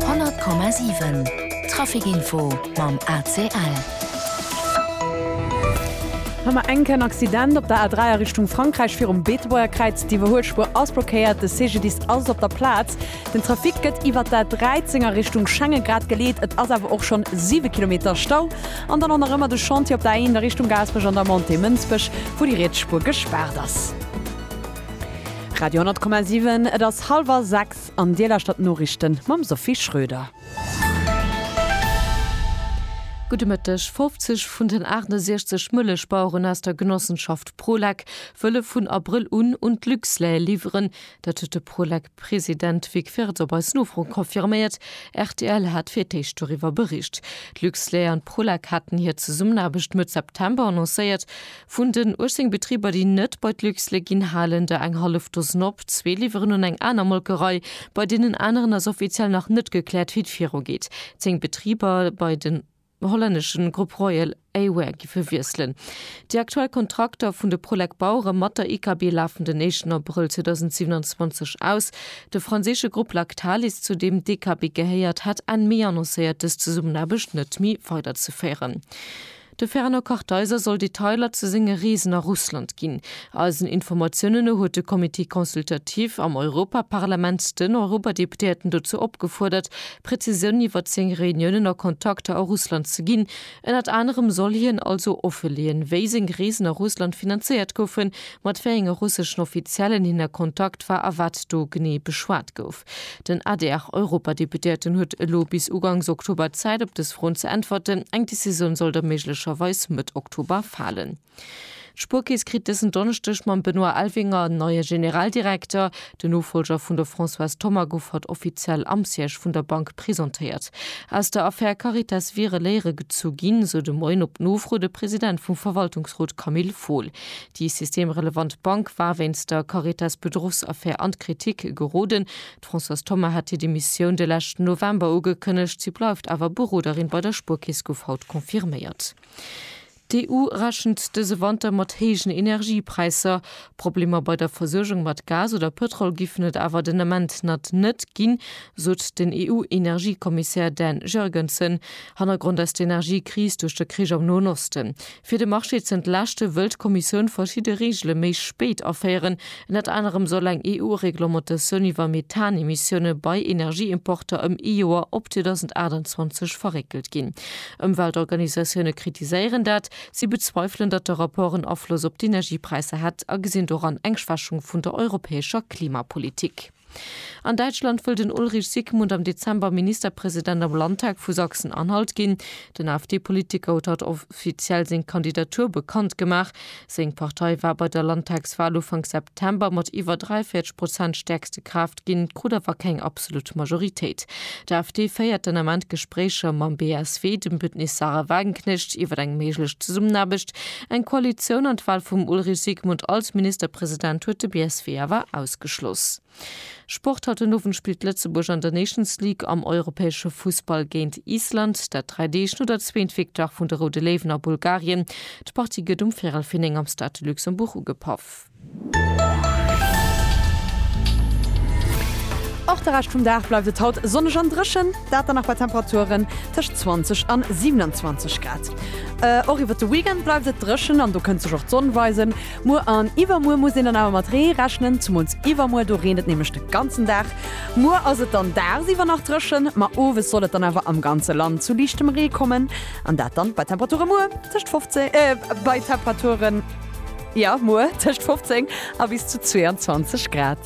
100,7 Trafic Info mam ACL. Hei mar enk en Accident op der A3 a Richtung Frankräich virum Beetebuerger Kräiz. D'Iwwerhuelspuer ass blockéiert, de CGDIS ass op der Plaz. Den Trafic gëtt iwwert d'A13 a Richtung Schengen grad geleet, et ass awer och schonn 7 Kilometer Stau. An dann och nach ëmmer de Chantier op der A1 a Richtung Gaasperech an der Montée Mënsbech, wou déi riets Spuer gespaart ass. Radio 10,7 Et ass hallwer 6 an Dir lauschtert d'Noriichten mam Sophie Schröder. Gudde Mëtteg, 50 vun den 68 Mëllechbaueren aus der Genossenschaft Prolec wëlle vun Abrëll un un d'Luxlait liwweren. Dat huet de Prolec-President President Vic Firth op eis Nofro confirméiert, rtl hat fir d'éischt doriwwer bericht. D'Luxlait an d'Prolac haten hir Zesummenaarbecht Mëtt September annoncéiert. Vun den 18 Betriber, déi net bei d'Luxlait ginn, halen der eng hallef Dosen op. Zwee liwweren un eng aner Molkerei. Bei deenen aneren ass offiziell nach net gekläert, wéi et virugeet. Zéng Betriber, bei den. hollänneschen Grupp Royal Air-Wear gi verwiesselen. Déi aktuell Kontrakter vun de Prolec Bauere mat der IKB lafen den éischten Abrëll 2027 aus. De franséische Grupp Lactalis, zu deem d'IKB gehéiert, hat Enn Mee annoncéiert, dës Zesummenaarbecht net méi weiderzeféieren. De Fernand Kartheiser soll Detailer zu senge Reesen a Russland ginn. Eisen Informatiounen no huet de Comité consultatif am Europaparlament den Europadeputéierten dozou opgefuerdert, Präzisiounen iwwer zéng Reuniounen a Kontakter a Russland ze ginn. Ënnert anerem soll hien also offeleeën, wéi seng Reesen a Russland finanzéiert goufen, mat wéi enge russeschen Offiziellen hien a Kontakt war a wat do genee beschwat gouf. Den ADR-Europadeputéierten huet elo bis ugangs Oktober Zäit, op dës Froen ze äntwerten. Eng Decisioun soll da méiglecherweis Mëtt Oktober falen. D'Spuerkeess kritt dësen Donneschdeg mam Benoît Elvinger en neie Generaldirekter. Den Nofollger vun der Françoise Thoma gouf haut offiziell am Siège vun der Bank presentéiert. Aus der Affär Caritas wiere Léiere gezu ginn, esou de Moien op Nofro de President vum Verwaltungsrot Camille Fohl. Déi systemrelevant Bank war wéinst der Caritas-Bedruchsaffär an d'Kritik geroden. D'Françoise Thoma hat hir Demissioun de leschten November ugekënnegt. Si bleift awer Beroderin bei der Spuerkeess, gouf haut confirméiert. D'EU rechent dëse Wanter mat héijen Energiepräisser. Problemer bei der Versuergung mat Gas oder Pëtrol giffen et awer den Ament nat net ginn, sot den EU-Energiekommissär Dan Jurgensen. Hannergrond ass d'Energiekris duerch de Krich am Noen Osten. Fir de Marché z'entlaaschte wëll d'Kommissioun verschidde Reegele méi spéit aféieren. Ënnert anerem soll eng EU-Reglementatioun iwwer Methanemissioune bei Energieimporter ëm ee Joer op 2028 verréckelt ginn. Ëmweltorganisatioune kritiséieren dat. Si bezweifelen, datt de Rapport en Afloss op d'Energiepräisser hätt a gesinn doran eng Schwächung vun der europäescher Klimapolitik. An Däitschland wëll den Ulrich Sigmund am Dezember Ministerpresident am Landtag vu Sachsen-Anhalt ginn. Den AfD-Politiker huet haut offiziell seng Kandidatur bekannt gemaach. Seng Partei war bei der Landtagswal Ufank September mat iwwer 43 Prozent stäerkste Kraaft ginn, krut awer keng absolut Majoritéit. D'AfD féiert den Ament Gespréicher mam BSW, dem Bündnis Sarah Wagenknecht, iwwer eng méiglech Zesummenaarbecht, eng Koalitioun an d'Wal vum Ulrich Sigmund als Ministerpresident huet de BSW awer ausgeschloss. Sport, Haut den Owend spillt Lëtzebuerg an der Nations League am europäesche Fussball géint Island. Dat dräi Deeg no der zweent Victoire vun de Roude Léiwen a Bulgarien. D'Partie gëtt um Véirel vir 9 am Stade de Luxembourg ugepaff. Och de Rescht vum Dag bleift et haut sonneg an dréchen, dat dann nach bei Temperaturen tëscht 20 an 27 Grad. Och iwwert de Weekend bleift et dréchen an do kënnt sech och d'Sonn weisen. Muer an iwwermuer muss een dann awer mat Ree rechnen, zemools iwwermuer, do reent et nämlech de ganzen Dag. Muer ass et dann dagsiwwer nach dréchen, ma owes soll et dann awer am ganze Land zu liichtem Ree kommen, an dat dann bei Temperature muer tëscht 15, äh, bei Temperaturen, jo, muer tëscht 15 a bis zu 22 Grad.